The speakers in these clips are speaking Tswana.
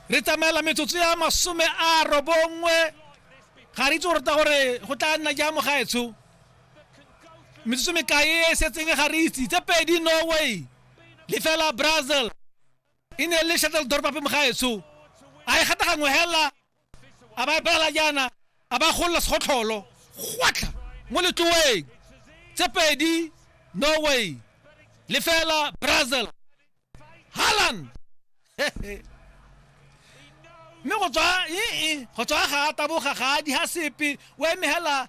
re tsamaela metsotso ya masome a robongwe ga re itse gore ta gore go tla nna jang mogaetsho metsotso mekae e setseng ga re itse tse pedi norway le fela brazil e ne le shuttledorp ape mogaetsho a e gata gangwe hela a ba epela jaana a ba golola segotlholo gwatlha mo letloweng tse pedi norway le fela brazil haland mme go tswa ee go tswa ga a taboga ga a di ha sepe o eme hela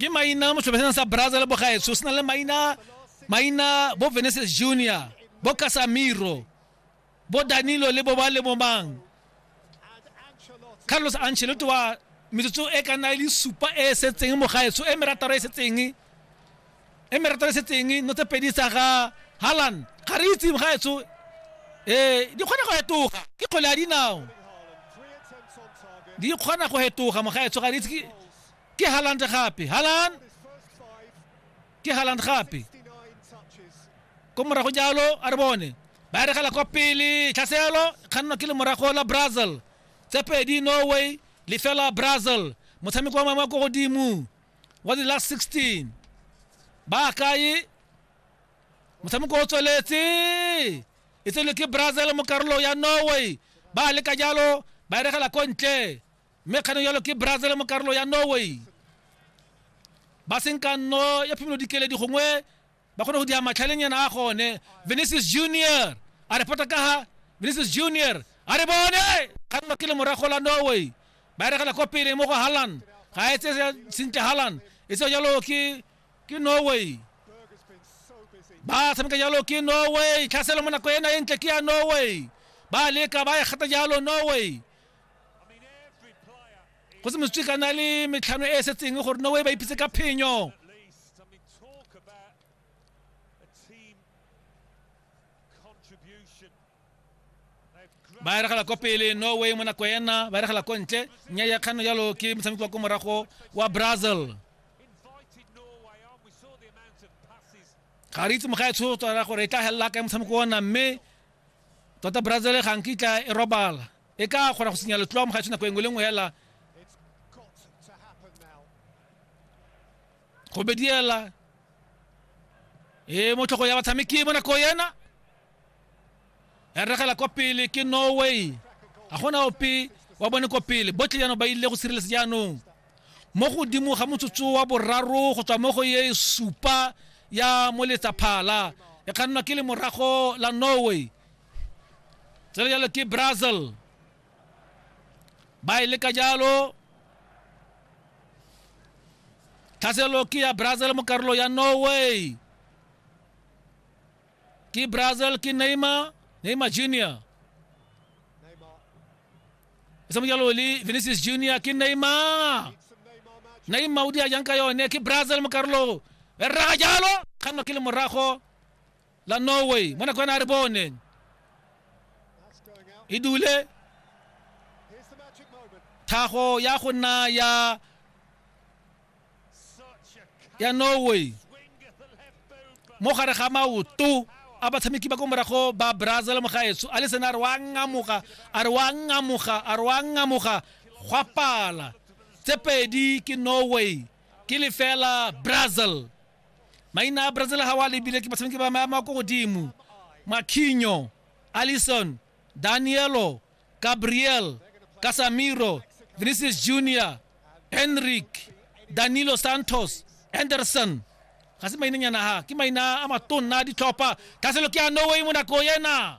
ke maina mo sebeseng sa braza le bogaetsho se na le maina maina bo veneses junior bo casamiro bo danilo le bo ba le bomang carlos ancelotti wa metsotso e ka nna e le supa e e setseng mogaetsho e merataro e setseng e me ratwa le setseng no tse pedi tsa ga halan ga re itse ga etso ee di kgona go fetoga ke kgole ya dinao di kgona go fetoga mogaetso ga re itse ke- ke halan gape halan ke halan gape ko morago jalo a re bone ba e regela kwa pele tlhaselo kgannwa ke le morago la brazil tse pedi norway lefela brazil motshameko wa mangwe wa ko godimo wa di last 16 ba kae motshameko o tsweletse e tswelwe ke brazil mo karolong ya norway ba leka jalo ba eregela ko ntle mme kganong jalo ke brazil mo karolong ya norway ba senkanno ya phimolo dikeledi gongwe ba kgone go dira matlhalenyana a gone venesis junior a re pota ka ga venesis junior a re bone kganwa ke le morago la norway ba eregela ko pele mo go halan ga e tse sentle halan e tse jalo ke ke norway ba tshameka jalo ke norway tlhaselo mo nako ena e ntle ke ya norway ba leka ba e gata jalo norway go se mositswe ka na le metlhano e e setseng gore norway ba ipitse ka phenyo ba eregela kwa pele norway mo nako ena ba eregela ko ntle nya ya kgano jalo ke motshameki wa ko morago wa brazil ga re itse moga e tshotswara gore e tla felela kae motshameko ona mme tota brazil ga nkitla e robala e ka kgona go senya letloa mo ga tshwana nako e nngwe le nngwe hela go bediela e mo tlhogo ya batshameki mo nako ena ya regela kwa pele ke norway ga gona ope wa bone kwa pele botlhe jaanong ba ile go sireletsa jaanong mo godimo ga motsotso wa boraro go tswa mo go ye supa ya moletsaphala e kgannwa ke le morago la norway tsere jalo ke brazil ba e leka jalo tlhaselo ke ya brazil mo karolo ya norway ke brazil ke neymar neymar junior e se mo jalo le vinicius junior ke neymar neymar o di a jang ka yone ke brazil mo karolo e rraga jalo kganno ke le morago la norway mo nakwana a re bone e dule thago ya go nna ya ya norway mo gare ga maoto a batshameki ba ko morago ba brazil mogaetso a le sena a re wa ngamoga a re wa ngamoga a re wa ngamoga gwa pala tse pedi ke norway ke lefela brazil maina a brazil ga wa lebile ke batshameki ba maemo a ko godimo makhinyo allison danielo gabriel casamiro vinicius junior henrik danilo santos anderson ga se mainenyana ga ke maina a matonna a ditlhopha thaselo ke a norway mo nako ena